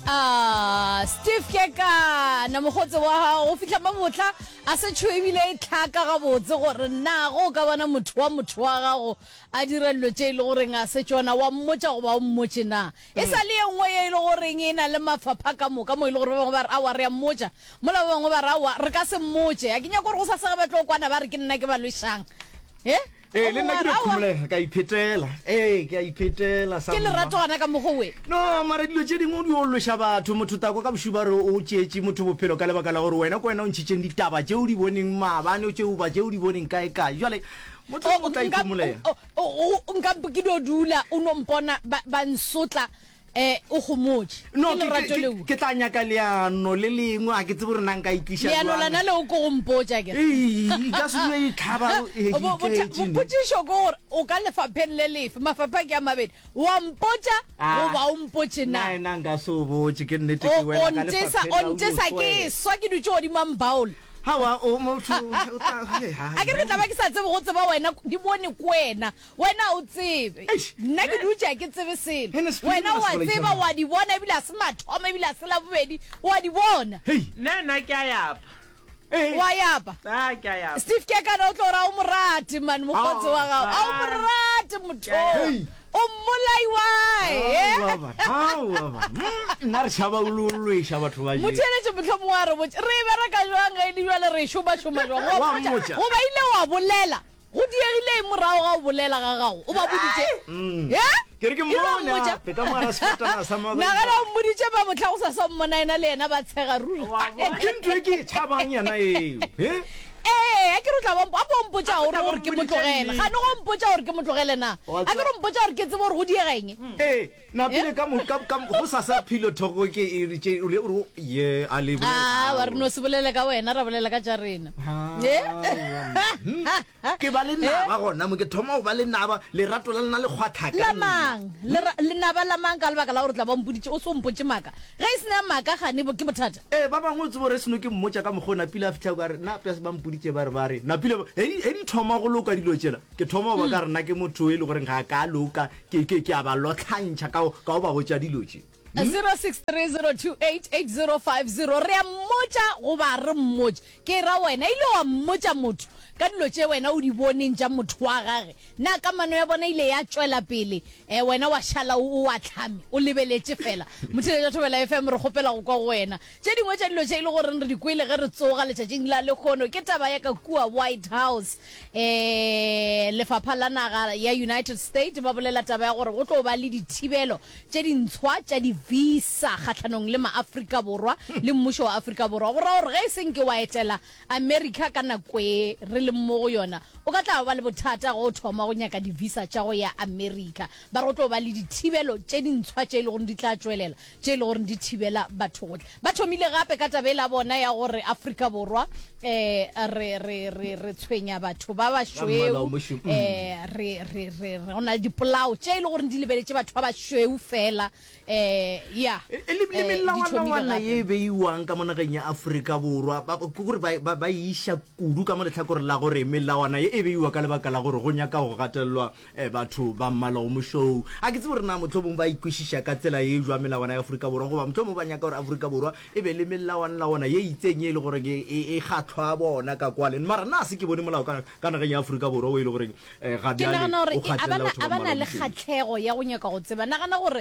Ah, steve kekana mogotse wa gago go fitlha mabotla a se tsho ebile e tlhaka gabotse gore na go ka bona motho wa motho wa gago a dira dilo tse e le goreng a se tsona wa mmotsa goba o mmotse na e sa le ye nngwe ye e le goreng e na le mafapha ka moka mo e le gore ba bangwe ba re awa re ya mmotsa mola ba bangwe ba re awa re ka se mmotse a ke nyako gore go sa sega ba tlo kwana ba re ke nna ke ba lwesang e ee le nna ke Aowa, aowa. dikgomolege ka iphetela ee ke a iphetela sa ke mma. lerato gana ka mogo we no mara dilo tše dingwe o di olloša batho motho tako ka bošuba re o tšeetše motho bophelo ka lebaka la gore wena ko wena o ntšhitšeng ditaba tše o di boneng maabane o tšeuba tše o di boneng kae kae jale motho o tla ikhomolega nka ke no dula o no mpona ba ba nsotla Eh, o gomotše. No, Ke ke- lorato ke- leo. ke tla nyaka leano le lengwe a ke tsebe gore na nka itliša Leano jwang. lana leo ke go mpotša ke. Ee, ka se dule e tlhaba, eh, Bo- botha- iketšene. Bopotšišo ke gore o ka lefapheng le lefe, mafapha ke a mabedi. Wa mpotša Ah. goba o mpotše na. Na, na nka se o botše ke nnete O- ke wena o ka ntesa- lefapheng o la o ntesa ke utlwe. swa ke dutše godimo a mbaola. Hawa, o motho, o tla- he, ha, a ke re tla ba ke sa tsebe go tseba wena di bone ko wena wena o tsebe nna ke dutša ke tsebe selo wena wa tseba wa di bona ebile a se mathomo ebile a se la bobedi wa di bona nna nna ke a yapa wa yapa steve ke kana o tlo ra o morate mane mokgotse wa gago a o morate motho o mmolaiwaenna re šaba ulolloeša batho ba motheletše motlhomong wa re botse re e bereka jwang ge e le jwale re šomašoma jwang goba ile wa bolela Go diegile eng morago ga go bolela ga gago? O ba boditše? Ee. Ke re ke Ile wa mmone mmotša? gape ka mo gara sefatana sa Nagana Mother. o mmoditše ba mohla go sa sa mmona yena le yena ba tshega ruri. Wa bona? Ke ntho e ke e tšhabang yena eo. He? Ee, a ke re o tla ba mpo- a ko mpotša o re gore ke mo tlogele. Ga ne go mpotša gore ke mo tlogele na? Wa A ke re o mpotša gore ke tsebe gore go diega eng? Ee, Napile ka mo, ka, ka, go sa sa philo thoko ke e re tše, o re, o re, ye, a le bolela. Aa, wa re no se bolele ka wena, ra bolela ka tša rena. Haa, ke ba le naba gona mo, ke thoma go ba le naba, lerato la lena le kgwatha ka nna. La mang? Lera, lenaba la mang ka lebaka la gore tla ba mpoditše, o se o mpotše maka. Ge e se na maka gane bo, ke bothata. Ee, ba bangwe o tseba o re se no ke mmotša ka mokgwa o Napile a fihla kwa, a re, nna Pes ba mpoditše ba re, ba re, Napile, ge di, ge di thoma go loka dilo tšela, ke thoma go ba ka re nna ke motho e le goreng ga ka loka, Ke, ke, ke a ba lotlhantšha ka go, ka go ba botša dilo tše. Mme. 0630288050 re a mmotša goba re mmotše ke ra wena ile wa mmotša motho ka dilo tše wena o di boneng tša motho wa gage na kamano ya bona ile ya tšwela pele eh, wena wa šala o o ahlame o lebeletše fela motheletša thobela fm re kgopela go kwa go wena Tše dingwe tša dilo tše e le goreng re di kwele ge re tsoga letšatšing la lekgono ke taba ya ka kua White House. E, lefapha la naga ya United States ba bolela taba ya gore go tlo ba le dithibelo tše dintshwa tša di-visa kgahlanong le maAfrika Borwa le mmušo wa Afrika Borwa. Go ra gore ge e seng ke wa etela America ka nako e re leng mo go yona, o ka tla ba le bothata ge o thoma go nyaka di-visa tša go ya America. Ba re go tlo ba le dithibelo tše dintshwa tše e le goreng di tla tšwelela tše e le gore di thibela batho go tla. Ba thomile gape ka taba e la bona ya gore Afrika Borwa um re re re re tshwenya batho ba bašweu um re re re go na le dipolao tše e le gore di lebeletše batho ba bašweu fela um ya le melawana ye e beiwang ka mo nageng ya Afrika Borwa ke gore ba iša kudu ka mo letlhakoreng la gore melawana ye e beiwa ka lebaka la gore go nyaka go gatelelwa e batho ba mmala o mošou. A ke tsebe gore na mohlomong ba ikwešiša ka tsela ye jwa melawana ya Afrika Borwa goba mohlomong ba nyaka gore Afrika Borwa e be le melawanlawana ye itseng ye e le gore e, e, e kgatlhwa bona ka kwale. Mara nna se ke bone molao ka, ka nageng ya Afrika Borwa o e le gore eh, ga ke bjale nagana gore o e, kgatlelela abana batho ba mmala abana o le mošweu. kgatlhego ya go nyaka go tseba nagana gore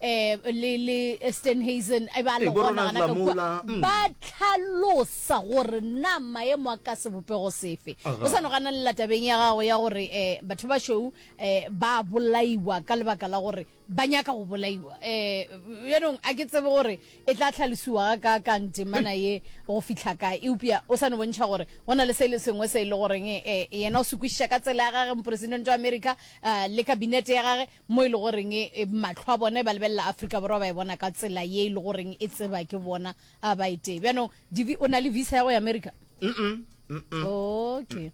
eh, le, le stenhazen e ba le gonagana ka kua mm. ba tlhalosa gore na maemo a ka sebopego sefe o sa nogana lela tabeng ya gago ya gore um batho ba show um eh, ba bolaiwa ka lebaka la gore ba nyaka go bolaiwa um yanong a ke tsebe gore e tla tlhalosiwa ka kang temana ye go fitlha kae eupša o sa ne bontšha gore go na le se le sengwe se e le goreng um yena o se kwešiša ka tsela ya gage moporesidente wa america um le kabinete ya gage mo e le goreng mahlo a bona e ba lebelela Afrika Borwa ba e bona ka tsela ye e le goreng e tseba ke bona a ba e tee bjanong divi o na le visa ya go ya America okay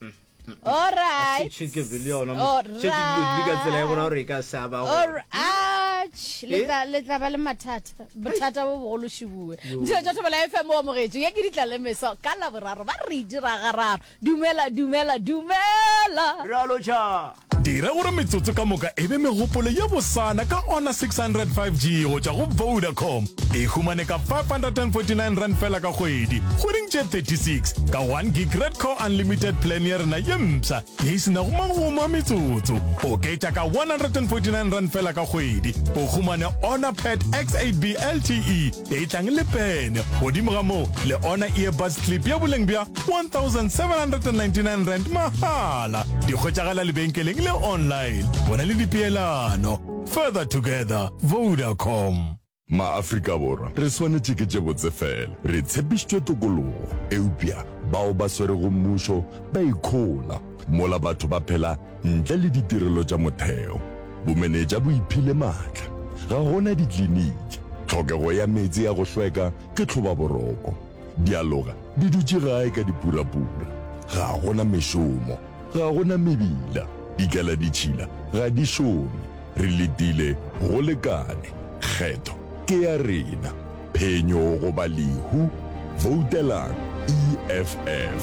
Alright. Chike vile yona. Oh, Chike vile ka tsela ya gore ka sa ba. Alright. Le tla le tla ba le mathata. Bothata bo bogolo shibue. Ntse tsa thobela FM o mogetso. Ya ke ditla le meso ka la boraro ba re dira gararo. Dumela, dumela, dumela! Bjalo tša. Dira gore metsotso ka moka e be megopolo ye bosana ka Honor 600 5G go tšwa go Vodacom. E humane ka R549 feela ka kgwedi, kgweding tše 36, ka one gig Red Core Unlimited Plan ya rena ye mpsha ye e se nago magomo a metsotso. Oketša ka R149 feela ka kgwedi, o humane Honor Pad X8B LTE. e tlang le pene godimo ga moo le ona earbuds clip ya boleng bja 1799 rand mahala di kgwetšagala lebenkeleng le online bona le dipeelano further together vodacom maafrika borwa re swanetše ke tše botse fela re tshepišitšwe tokologo eupša bao ba swerego mmušo ba ikhola mola batho ba phela Ntle le ditirelo tša motheo, bomenetša bo iphile maatla. Ga go na dikliniki, tlhokego ya meetse ya go hlweka ke tlhobaboroko, dialoga di dutše gae ka dipurapura, ga go na mešomo, ga go na mebila, dikaladitšhila ga di šome, re letile go lekane, kgetho ke ya rena, phenyo goba lehu, voutelang EFF.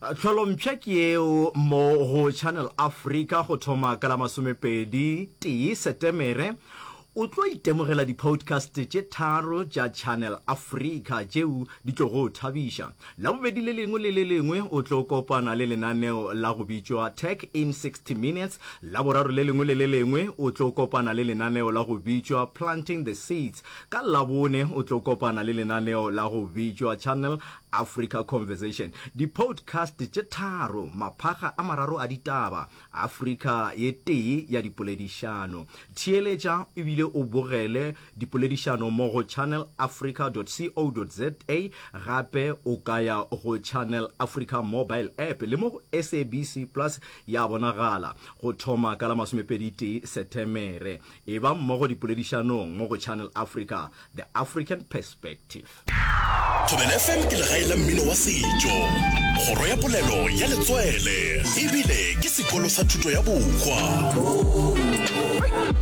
Tlholompsha ke yeo mo go Channel Africa go thoma ka la masomepedi tee Setemere. O tlo itemogela di-podcast tše tharo tša Channel Africa tšeo di tlo go thabiša. Labobedi le lengwe le le lengwe o tlo kopana le lenaneo la go bitšwa Tech in 60 Minutes. Laboraro le lengwe le le lengwe o tlo kopana le lenaneo la go bitšwa Planting the Seeds. Ka Labone o tlo kopana le lenaneo la go bitšwa Channel Africa Conversation, Dipoutcast tše tharo, maphaga a mararo a ditaba, Africa ye tee ya dipoledišano. Theeletša e bile o bogele dipoledišano mo go channelafrica.co.za, gape o ka ya go Channel Africa mobile app le mo go SABC Plus ya bonagala. Go thoma ka la masomepedi tee Setemere, eba mmogo dipoledišanong mo go Channel Africa, The African Perspective. Thobela FM ke legae la mmino wa setšo, kgoro ya polelo ya letswele ebile ke sekolo sa thuto ya bohwa.